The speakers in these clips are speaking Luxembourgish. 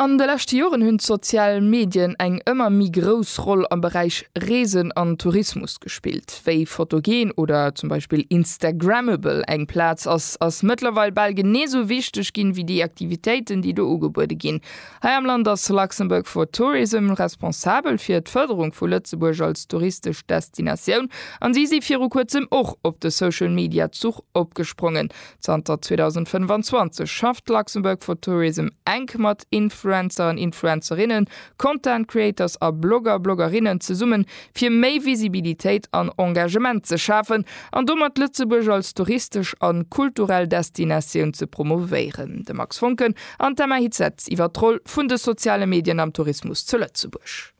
An de leschte Joren hunn d'sozial Medien eng ëmmer méi grouss Roll am Beräich Reesen an Tourismus gespillt. Wéi photogen oder zum Beispill instagrammable eng Plaz ass, ass mëttlerweil bal genee esou wichteg ginn wéi déi Aktivitéiten, déi do ugebuede ginn. Hei am Land ass Luxembourg for Tourism responsabel fir d'Fërderung vu Lëtzebuerg als touristesch Destinatioun an si si viru kuerzem och op de Social-Media-Zuch opgesprongen. Zanter 2025 schafft Luxembourg for Tourism enk mat Influencer an Influencerinnen, Content Creators a Blogger, Bloggerinnen zesummen, fir méi Visibilitéit an Engagement ze schafen an domat Lëtzebuerg als touristesch an kulturell Destinatioun ze promouvéieren. De Max Voncken an d'Emma Hitzseth iwwer d'Roll vun de soziale Medien am Tourismus zu Lëtzebuerg.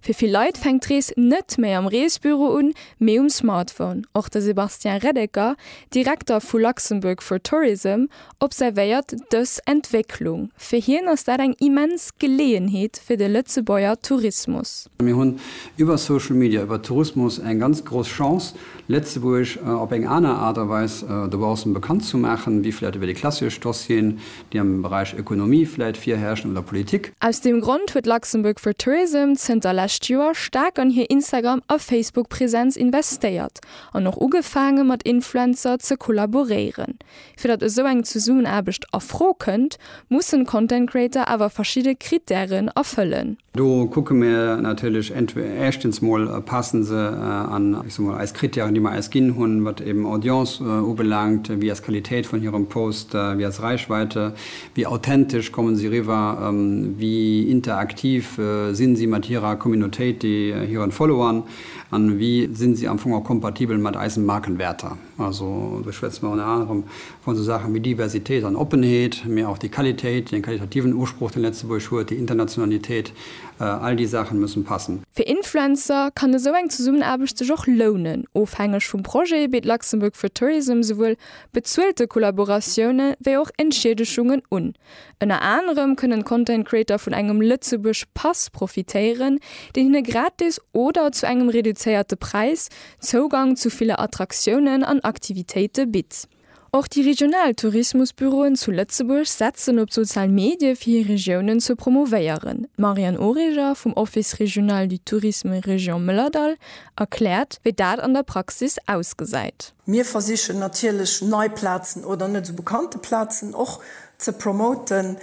Fir vill Leit fänkt d'Rees net méi am Reesbüro un, mee um Smartphone. Och de Sébastien Reddecker, Direkter vu Luxembourg for Tourism, observéiert dës Entwécklung. Fir hien ass dat eng immens Geleeënheet fir de Lëtzebuerger Tourismus. Mir hunn iwwer Social Media, iwwer Tourismus eng ganz grouss Chance, Lëtzebuerg op eng aner Aart a Weis dobaussen bekannt ze maachen, wéi vläicht iwwer déi klassesch Dossieren, déi am Beräich Ökonomie vläit virherrschen, oder Politik. Aus deem Grond huet Luxembourg for Tourism zënter lescht Joer staark an hir Instagram a Facebook Präsenz investéiert an och ugefaange mat Influencer ze kollaboréieren. Fir datt esou eng Zesummenaarbecht a Fro kënnt, mussen Content Creator awer verschidde Krittären erfëllen. Do kucke mir natierlech éischtens mol, passe se an, ech soe mol, eis Krittären, déi mer eis ginn hunn, wat eben Audience ubelaangt, wéi ass d'Qualitéit vun hirem Post, wéi ass Reichweite, wéi authentesch kommen si riwwer, wéi interaktiv sinn si mat hirer Communautéit, hiren Followern an wéi sinn si am Fong och kompatibel mat eisen Markenwäerter. Also do schwätze mer ënner anerem vu sou Saache wéi Diversitéit an Oppenheet, mee och déi Qualitéit, deen qualitativen Usproch, dee Lëtzebuerg huet, déi Internationalitéit, all déi Saachen mussen passen. Fir Influencer kann esou eng Zesummenaarbecht sech och lounen. Ofhängeg vum Projet bitt Luxembourg for Tourism souwuel bezuelte Kollaboratioune wéi och Entschiedeschungen un. Ënner anerem kënnen d'Content Creator vun engem Lëtzebuerg Pass profitéieren, deen hinne gratis oder zu engem reduzéierte Präis Zougang zu ville Attraktiounen an Aktivitéite bitt. Och déi regional Tourismusbüroen zu Lëtzebuerg setzen op d'sozial Medie fir hir Regiounen ze promouvéieren. D'Marianne Origer vum Office Régional du Tourisme Région Mëllerdall erkläert, wéi dat an der Praxis ausgesäit. Mir versichen natierlech nei Plazen oder net esou bekannte Plazen och ze promoten.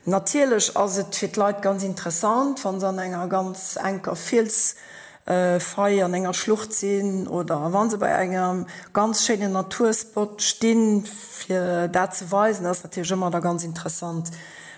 Natierlech ass et fir d'Leit ganz interessant, wa se an enger ganz enker Fiels Fei an enger Schlucht sinn oder wa se bei engem ganz schéinen Naturspot stinn, fir dat ze weisen, dat ass natierlech ëmmer da ganz interessant.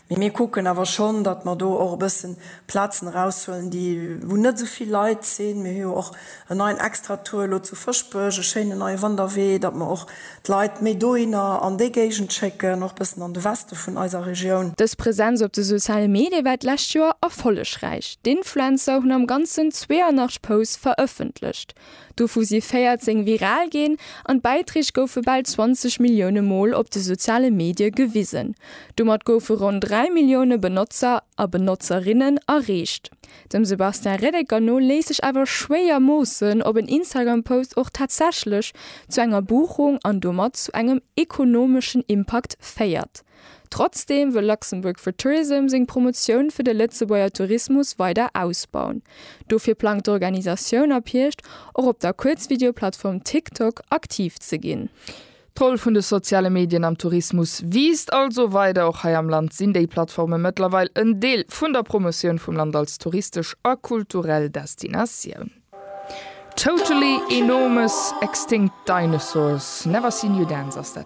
Mee mir kucken awer schonn, datt mer do och e bëssen Plazen eraushuelen, déi, wou net esou vill Leit sinn. Mir hu jo och en neien Extratour elo zu Fëschbech, e schéinen neie Wanderwee, datt mer och d'Leit méi dohinner an déi Géigend schécken, och bëssen an de Weste vun eiser Regioun. Dës Presenz op de soziale Medie war d'lescht Joer erfollegräich. D'Influencer hunn am Ganzen 82 Posts verëffentlecht, dovu si 14 viral ginn an d'Bäiträg goufe bal 20 Millioune Mol op de soziale Medie gewisen. Domat goufe ronn 3 Millioune Benotzer a Benotzerinnen erreecht. Dem Sebastien Reddecker no léisst sech awer schwéier moossen, ob en Instagram-Post och tatsächlech zu enger Buchung an domat zu engem ekonomeschen Impakt féiert. Trotzdeem wëll Luxembourg for Tourism seng Promotioun fir de Lëtzebuerger Tourismus weider ausbauen. Dofir plangt d'Organisatioun ab Hierscht och op der Kuerzvideoplattform TikTok aktiv ze ginn. D'Roll vun de soziale Medien am Tourismus wiisst also weider. Och hei am Land sinn déi Plattforme mëttlerweil en Deel vun der Promotioun vum Land als touristesch a kulturell Destinatioun. Totally Enormous Extinct Dinosaurs, Never Seen You Dance ass dat.